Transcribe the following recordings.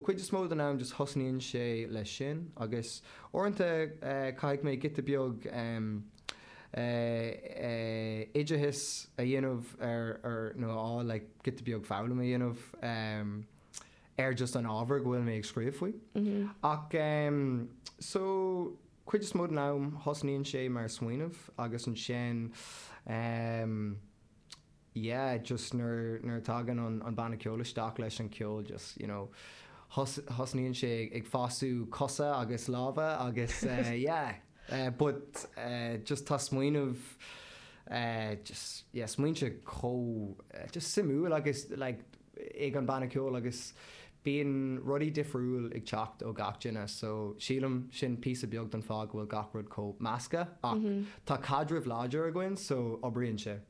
Cuid is mó den am just thosnaíonn sé leis sin agus uaireanta caithfidh mé giota beag oideachais a dhéanamh ar nó a fháil like giota beag foghlaim a dhéanamh ar just an ábhar go bhfuil mé ag scríobh faoi. Ach so cuid is mó den am thosnaíonn sé mar smaoineamh agus ansin. yeah just nuair nuair a tagann an an banna ceoil isteach leis an ceol just you know thos thosnaíonn sé ag fasú cosa agus lámha agus eh yeah eh but eh just tá smaoineamh eh just yeah smaointe chomh just suimiúil agus like ag an banna ceoil agus bíonn rudaí difriúil ag teacht ó gach duine so sílim sin píosa beag don fáth go bhfuil gach rud chomh measctha ach tá caidreamh láidir againn so oibríonn sé.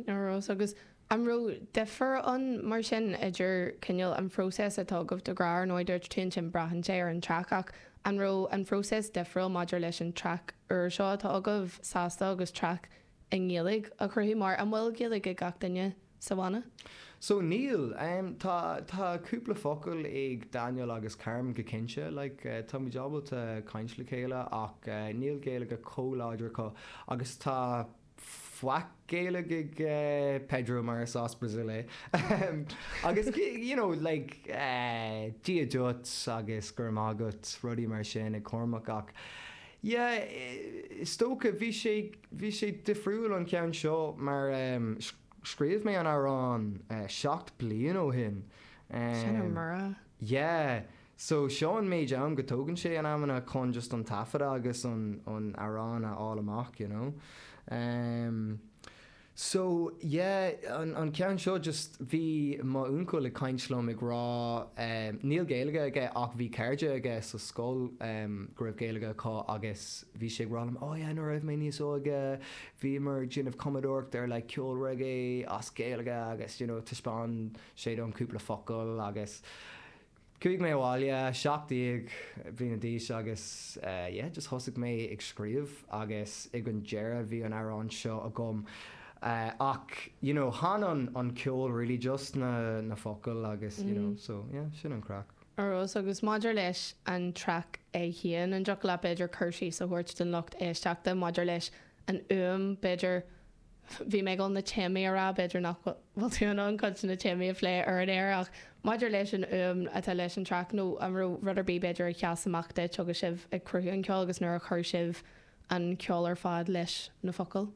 A Rós, Agus an raibh difear ann mar sin idir cineál an phróiseas atá agaibh do Grá, ar ndóigh dúirt tú ansin braitheann sé ar an traic ach an raibh an phróiseas difriúil maidir leis an traic úr seo atá agaibh, Sásta, agus traic i nGaeilge a chruthú mar, an bhfuil Gaeilge ag gach duine sa bhanna? So, níl. Tá, tá cúpla focal ag Daniel agus Carmen go cinnte, like, tá muid ábalta caint le chéile ach níl Gaeilge chomh láidir acu agus tá faic Gaeilge ag Pedro mar is as Brazil é agus you know, like, Dia duit agus go raibh maith agat, rudaí mar sin ag Cormac ach, Yeah, is dócha. Bhí sé, bhí sé difriúil an ceann seo mar ehm, scríobh mé an amhrán eh seacht bliain ó shin. Sin a Ehm, mire. yeah. So seo an méid am go dtógann sé in amanna chun just an taifeadadh agus an, an amhrán a fháil amach, you know. Ehm. So, yeah, an, an ceann seo just, bhí mo uncail ag caint liom ag rá ehm, níl Gaeilge aige ach bhí cairde aige sa scoil ehm go raibh Gaeilge acu agus bhí sé ag rá liom oh yeah nuair a raibh mé níos óige bhíomar ag déanamh cumadóireacht ar like ceol reggae as Gaeilge agus you know taispeáin sé dom cúpla focal agus Chuaigh mé abhaile, seacht déag bliana d'aois agus yeah, just thosaigh mé ag scríobh agus ag an deireadh bhí an amhrán seo agam ach you know chan an ceol really just na focail agus you know so yeah sin an craic. A Róis agus maidir leis an traic é féin, an dtiocfadh leat b'fhéidir cur síos a thabhairt don lucht éisteachta maidir leis an fhuaim b'fhéidir, Bhí mé ag gabháil na téamaí a rá, b'fhéidir nach bhfuil tú in ann cuid de na téamaí a phlé ar an aer ach maidir leis an fhuaim atá leis an traic nó an raibh rud ar bith b'fhéidir a sheas amach duit agus sibh ag cumadh an cheoil agus nuair a chuir sibh an ceol ar fad leis na focail?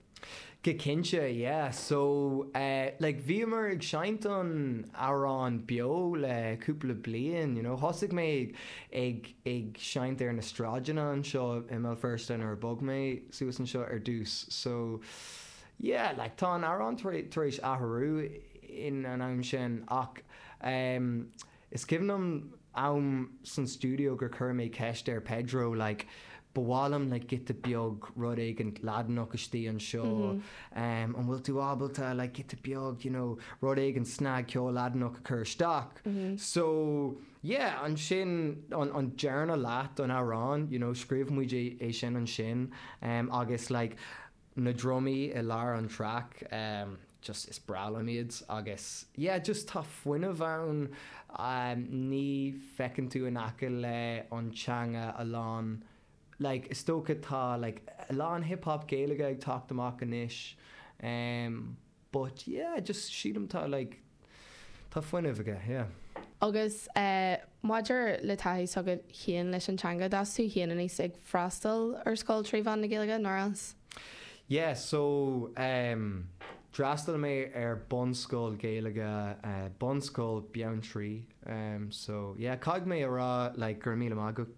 Go cinnte, yeah. So, eh, like, bhíomar ag seinnt an amhráin beo le cúpla bliain, you know. Thosaigh mé ag, ag. ag seinnt ar na sráideanna anseo i mBéal Feirste nuair a bhog mé suas anseo ar dtús so yeah like tá an amhrán tar éis athrú in an am sin ach em is cuimhin liom am san stiúideo gur chuir mé ceist ar Pedro like ba mhaith liom like giota beag rud éigin Laidineach istigh anseo em an bhfuil tú ábalta like giota beag you know rud éigin snag ceol Laidineach a chur isteach so Yeah, ansin an, an dara leath don amhrán, you know, scríobh muid é, é sin ansin, em, agus like na drumaí i lár an track, em, just is breá liom iad agus yeah, just tá fuinneamh ann, em, ní fheiceann tú in aice le an teanga a lán like is dócha tá like a lán hip hop Gaeilge ag teacht amach anois, em, But yeah, just sílim tá like tá fuinneamh aige, yeah. Agus eh maidir le taithí s'agat féin leis an teanga, d'fhás tú féin aníos ag freastal ar scoil trí mheán na Gaeilge, nár fhás? Yeah, so em d'fhreastail mé ar bunscoil Gaeilge eh Bunscoil Bheanntraí em so yeah caithfidh mé a rá like go raibh míle maith agat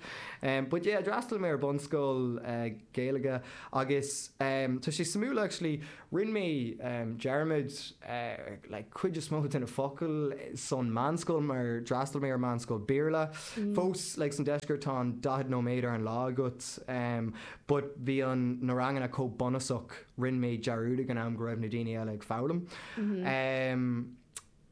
But yeah d'fhreastail mé ar bunscoil Gaeilge agus tá sé suimiúil actually, rinn mé dearmad like cuid is mó de na focail sa mheánscoil mar d'fhreastail mé ar meánscoil Béarla. Fós like san deisceart tá an daichead nóiméad ar an lá agat but bhí an na ranganna chomh bunúsach rinn mé dearmad ag an am go raibh na daoine eile ag foghlaim.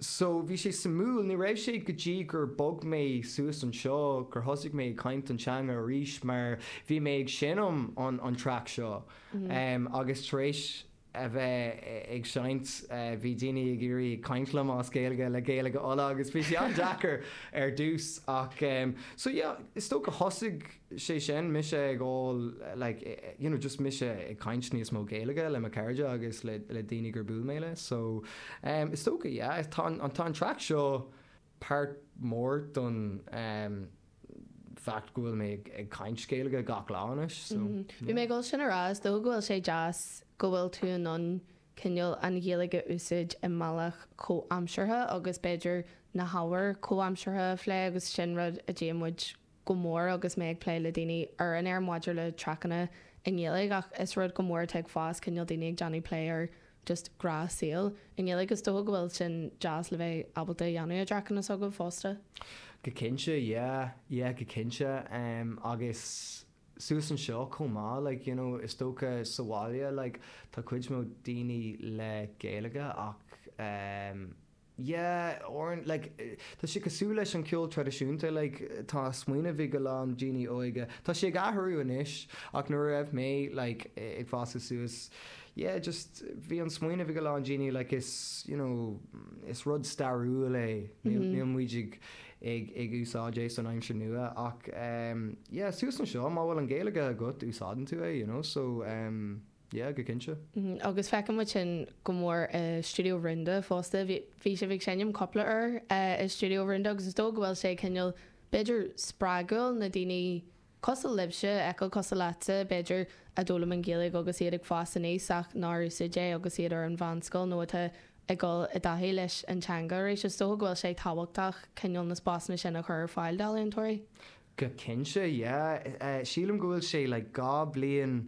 So bhí sé suimiúil. Ní raibh sé go dtí gur bhog mé suas anseo gur thosaigh mé ag caint an teanga arís mar bhí mé ag seinm an track seo agus tar éis a bheith ag seinnt bhí daoine ag iarraidh ag caint liom as Gaeilge le Gaeilge Uladh agus bhí sé an-deacair ar dtús ach so yeah is dócha thosaigh sé sin, mise ag fáil like you know just mise ag caint níos mó Gaeilge le mo cairde agus le le daoine gur buail mé le so em is dócha yeah tá an tá an track seo páirt mór don em fact go bhfuil mé ag ag caint Gaeilge gach lá anois so bhí mé ag gabháil sin a rá is dócha go bhfuil sé deas go bhfuil tú in ann cineál an Ghaeilge a úsáid i mbealach comhaimseartha agus b'fhéidir na hábhair comhaimseartha a phlé agus sin rud a dtéann muid go mór agus mé ag plé le daoine ar an aer maidir le traiceanna i nGaeilge ach is rud go mór atá ag fás, cineál daoine ag déanamh plé ar just grá saoil i nGaeilge. Is dócha go bhfuil sin deas le bheith ábalta a dhéanamh i dtraiceanna s'agaibh fosta. Go cinnte, yeah, yeah, go cinnte. Em, agus suas anseo chomh maith, like, you know, is dócha sa bhaile, like, tá cuid mhór daoine le Gaeilge ach, em, Yeah, ar an, like, tá sé cosúil leis an ceol traidisiúnta, like, tá smaoineamh ag a lán daoine óige, tá sé ag athrú anois, ach nuair a raibh mé, like, ag fás suas, yeah, just, bhí an smaoineamh ag a lán daoine, like, is, you know, is rud stairiúil é, níl, níl muid ag, ag, ag úsáid é san aimsir nua, ach, em, yeah, suas anseo, má bhfuil an Ghaeilge agat, úsáideann tú é, you know, so, em. Yeah, go cinnte. Agus chonaic muid sin go mór i Stiúideo Rúnda fosta. Bhí, bhí sibh ag seinm cúpla uair eh i Stiúideo Rúnda agus is dócha go bhfuil sé cineál b'fhéidir spreagúil na daoine cosúil libhse, a fheiceáil cosúil leatsa b'fhéidir, a d'fhoghlaim an Ghaeilge agus iad ag fás aníos ach nár úsáid é agus iad ar an mheánscoil nó atá ag dul i dtaithí leis an teanga arís. Is dócha go bhfuil sé tábhachtach cineál na spásanna sin a chur ar fáil d'ealaíontóirí. Go cinnte, yeah. Sílim go bhfuil sé like dhá bliain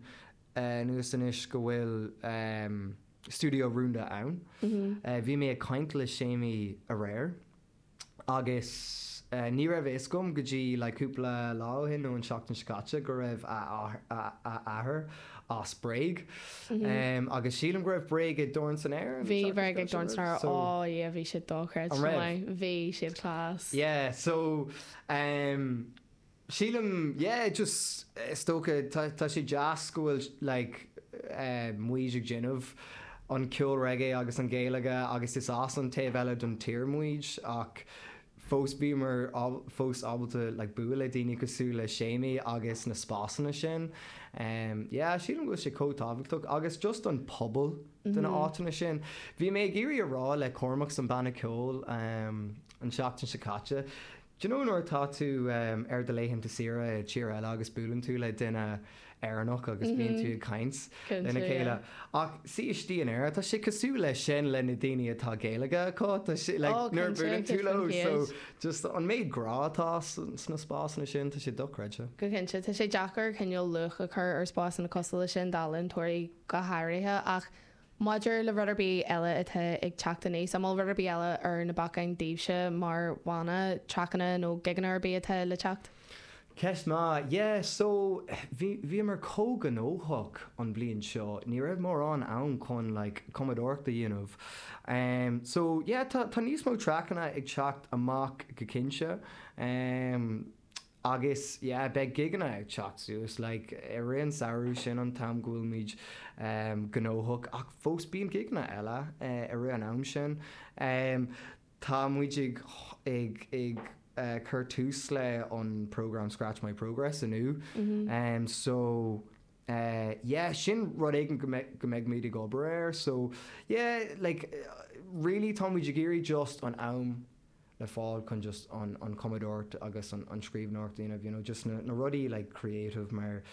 anuas anois go bhfuil Stiúideo Rúnda ann. Bhí mé ag caint le Séimí aréir agus ní raibh a fhios agam go dtí like cúpla lá ó shin nó an seachtain seo caite go raibh a athair as Bréag agus sílim go raibh Bréag ag Dorn san Aer an seachtain seo caite. Bhí Bréag ag Dorn san Aer, oh yeah bhí siad dochreidte. An raibh? Bhí siad class. Yeah, so. Em, sílim, yeah, just, is dócha, tá, tá sé deas go bhfuil like, eh, muid ag déanamh an ceol reggae agus an Ghaeilge agus is as an taobh eile don tír muid ach fós bhíomar ab, fós ábalta like bualadh le daoine cosúil le Séimí agus na spásanna sin. Em, yeah, sílim go bhfuil sé chomh tábhachtach agus just an pobal do na áiteanna sin. Bhí mé ag iarraidh a rá le Cormac san banna ceoil, em, an seachtain seo caite. Do you know nuair atá tú ar do laethanta saoire i dtír eile agus buaileann tú le duine Éireannach agus bíonn tú ag caint lena chéile. Ach istigh in Éirinn, tá sé cosúil leis sin le na daoine atá Gaeilge acu, tá sé like nuair a buaileann tú leo so just an méid grá atá sna spásanna sin, tá sé dochreidte. Go cinnte, tá sé deacair cineál luach a chur ar spásanna cosúil leis sin d'ealaíontóirí go háirithe ach Maidir le rud ar bith eile atá ag teacht aníos, an bhfuil rud ar bith eile ar na bacáin daoibhse mar bhanna, traiceanna nó gigeanna ar bith atá le teacht? Ceist maith. Yeah, so, bhí, bhíomar chomh gnóthach an bhliain seo, ní raibh mórán am chun like cumadóireacht a dhéanamh. Em, so, yeah, tá, tá níos mó traiceanna ag teacht amach go cinnte. Em. Agus, yeah, beidh gigeanna ag teacht suas, like, i rith an samhradh, sin an t-am go bhfuilimid gnóthach, ach fós bíonn gigeanna eile i rith an ama sin. Tá muid ag ag cur tús le an program Scratch My Progress inniu, so, yeah, sin rud éigin go mbeidh go mbeidh muid ag obair air, so, yeah, like, really tá muid ag iarraidh just an am, le fáil chun just an cumadóireacht agus an scríbhneoireacht a dhéanamh, you know, just na rudaí like creative mar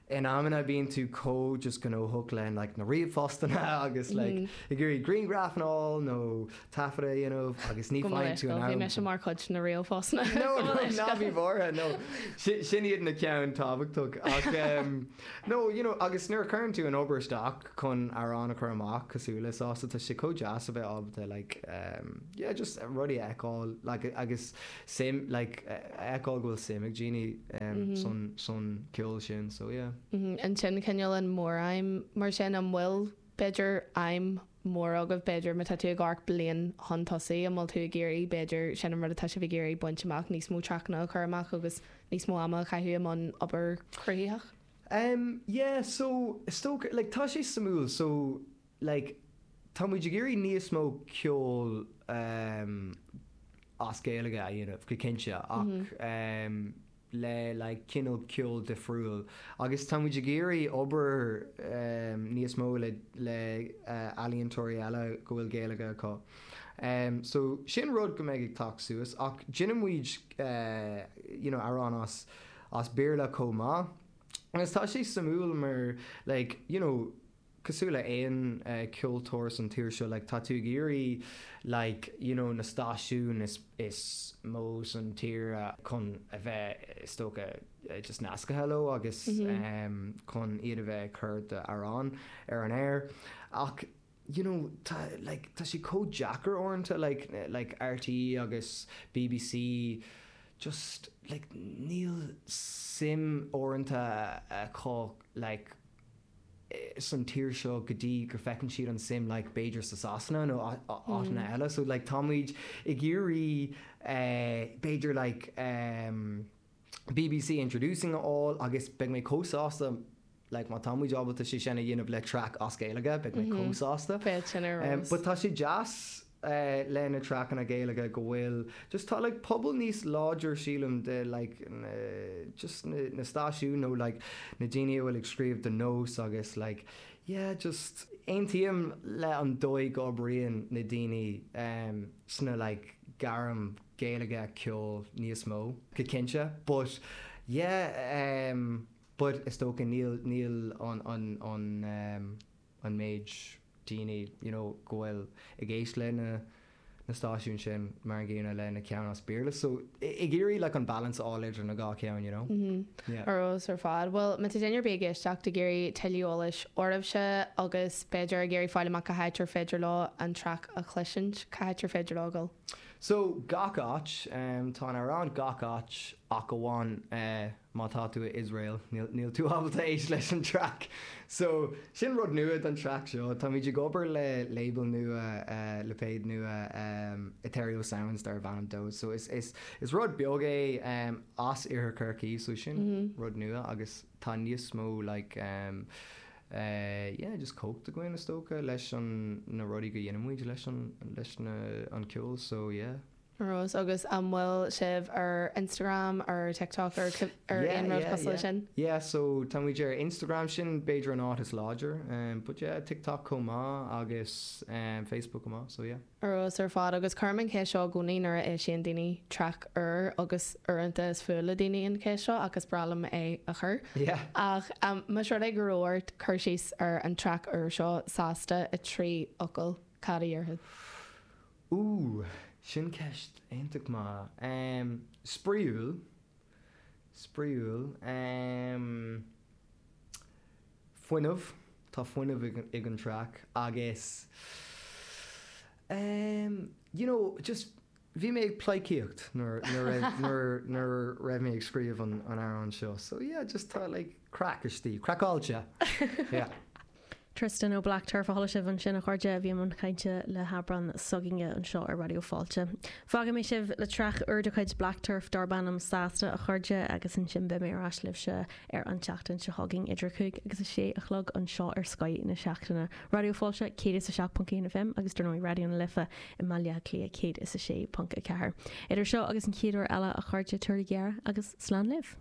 in amanna bíonn tú chomh just gnóthach le like na ríomhphostanna agus like ag iarraidh grianghraif and all nó taifead a dhéanamh agus ní faighinn tú an am. Bhí mise mar chuid de na ríomhphostanna. No, ná bí mhóra, no. Sin iad na ceann tábhachtach ach no, you know, agus nuair a chuireann tú an obair isteach, chun amhrán a chur amach cosúil le Sásta. Tá sé chomh deas a bheith ábalta like em yeah just rudaí a fheiceáil like agus suim like a fheiceáil go bhfuil suim ag daoine em san san ceol sin so yeah. Mm-hmm, and sin cineál an mór-aidhm mar sin an bhfuil b'fhéidir aidhm mór agaibh b'fhéidir má tá tú ag amharc bliain chun tosaigh an bhfuil tú ag iarraidh b'fhéidir sin an rud atá sibh ag iarraidh baint amach níos mó traiceanna a chur amach agus níos mó ama a chaitheamh i mbun obair chruthaitheach? Em, yeah, so, is dócha, like, tá sé suimiúil, so, like, táimid ag iarraidh níos mó ceoil, em, as Gaeilge a dhéanamh, go cinnte, ach, em, le, like, cineál ceol difriúil, agus táimid ag iarraidh obair, em, níos mó le, le, eh, ealaíontóirí eile go bhfuil Gaeilge acu. Em, so, sin rud go mbeidh ag teacht suas, ach déanfaimid, eh, you know, amhráin as, as Béarla chomh maith agus tá sé suimiúil mar like you know cosúil le aon ceoltóir san tír seo like tá tú ag iarraidh like you know na stáisiúin is is mó san tír chun a bheith is dócha just nascaithe leo agus chun iad a bheith ag cur d'amhráin ar an aer ach you know, tá, like, tá sé chomh deacair uaireanta, like, like RTÉ agus BBC, just, like, níl suim uaireanta acu, like, san tír seo go dtí go bhfeiceann siad an suim, like, b'fhéidir sa Sasana nó áiteanna eile, so, like, táimid ag iarraidh, eh, b'fhéidir, like, eh, BBC Introducing a fháil agus beidh mé chomh sásta like má táimid ábalta sé sin a dhéanamh le traic as Gaeilge beidh mé chomh sásta. Beidh sin ar ehm but eolas. tá sé deas eh le na traiceanna Gaeilge go bhfuil just tá like pobal níos láidre sílim de like na just na na stáisiúin nó like na daoine a bhfuil ag scríobh do Nós agus like yeah just aontaím le an dóigh go oibríonn na daoine ehm sna like gairm Gaeilge, ceol, níos mó. go cinnte but yeah em but is dócha níl níl an an an em an méid daoine you know go bhfuil ag éist le na na stáisiúin sin mar an gcéanna le na ceann as Béarla so ag iarraidh like an balance a fháil idir na dhá ceann you know yeah. Ar fheabhas ar fad. Bhuel, má tá duine ar bith ag éisteacht ag iarraidh tuilleadh eolais oraibhse agus b'fheidir ag iarraidh fáil amach cá háit ar féidir leo an traic a chloisint, cá háit ar féidir leo a dhul? So, gach áit. Tá an amhrán gach áit ach amháin má tá tú i Iosrael, níl tú ábalta éist leis an traic. So, sin rud nua don traic seo. Táimid ag obair le label nua, lipéad nua, Etherio Sounds darb ainm dó. So, is rud beag é as Iarthar Chorcaí, so sin rud nua agus. Tá níos mó like em eh yeah just cumhacht againn is dócha leis an na rudaí go dheinimid leis an leis na an ceol so yeah. Ar fheabhas, Agus an bhfuil sibh ar Instagram ar TikTok ar ar yeah, aon rud yeah, cosúil yeah. sin? Yeah so táimid ar Instagram sin b'fhéidir an áit is láidir em but yeah TikTok chomh maith agus em Facebook chomh maith so yeah. fheabhas ar fad agus cuirim an cheist seo i gcónaí nuair a eisíonn daoine traic úr agus uaireanta is fuath le daoine an cheist seo ach is breá liom é a chur. Ach más rud é go raibh ort cur síos ar an traic úr seo Sásta i trí fhocal, cad a déarfá? Ooh, sin ceist iontach maith. Em, spraíúil, spraíúil, em. Fuinneamh, tá fuinneamh ag an traic agus ehm you know just bhí mé ag pleidhcíocht nuair nuair nuair raibh mé ag scríobh an an amhráin seo so yeah just tá like craic istigh, craiceáilte yeah. Tristan ó Black Turf a chuala sibh ansin a chairde, bhí i mbun cainte le hAibreán s'againne anseo ar Raidió Fáilte. Fágfaidh mé sibh le traic úr de chuid Black Turf darb ainm Sásta a chairde agus ansin beidh mé ar ais libhse ar an tseachtain seo chugainn idir a cúig agus a sé a chlog anseo ar Scoth na Seachtaine, Raidió Fáilte 107.1 FM agus dar ndóigh Raidió na Life i mBaile Átha Cliath 106.4. Idir seo agus an chéad uair eile, a chairde, tabharaigí aire agus slán libh.